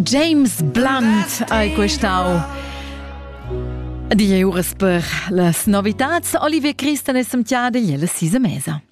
James Blunt ei questau. Die Uresberg, las novitats Olivier Christen e Samtiade jelle sise mesa.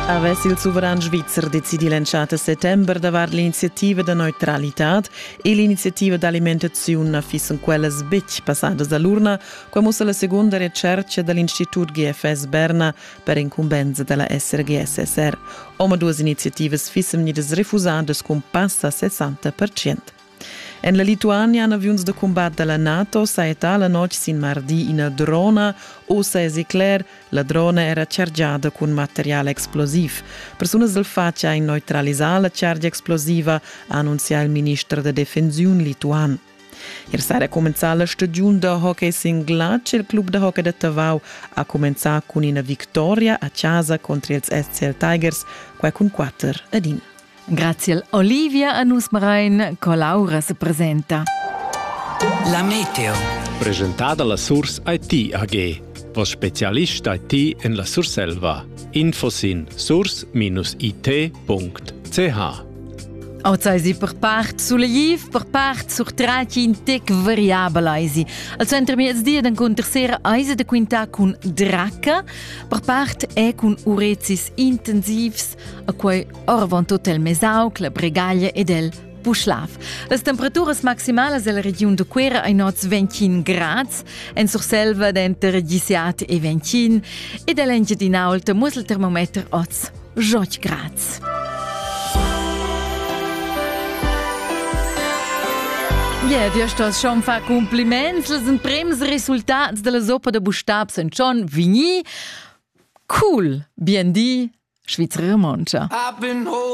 Avess il suveran svizzer decidi l'entschatta settember davart l'iniziativa da neutralitad e l'iniziativa d'alimentaziun na fissen quellas betg passadas da l'urna Quai mussa la segunda retschertga da l'Institut GFS Berna per incumbensa da la SRGSSR. Omaduas iniziativas fissan vegnidas refusadas cun passa 60 En la Lituania han aviuns da cumbat da la NATO sajettà la notg sin mardi ina drona. Ussa èsi cler, la drona era chargiada cun material explosiv. Persunas dal fatg han neutralisà la chargia explosiva, ha annunzià il minister da defensiun lituan. Ier sera cumenzà la stagiun da hockey sin glatsch. Il club da hockey da Tavau ha cumenzà cun ina victoria a chasa contro ils SCL Tigers, quai cun quatter ad in. Grazie Olivia a nus Marein, Colaura se presenta. La Meteo. Presentada la Surs IT AG. Vos specialist IT en la Surselva. Info sin surs-it.ch Ozeisi per part sulegliv, per part surtraci in tec variabel eisi. Al center miezdi ed encunter sera eisi da quintar cun draca, per part è cun urezis intensivs, a quei orvant hotel Mesauc, la Bregaglia ed el Puschlav. Las temperaturas maximalas della regiun de Quera ein oz 21 grads, en Surselva denter 17 e 21 ed all'Engiadinaulta muss il termometer oz Joch Graz. Yeah, dir stos schon fa compliments, les en prems resultats della zoppa da bustab sen chon vigni. Cool, bien di, Schweizerin Moncha.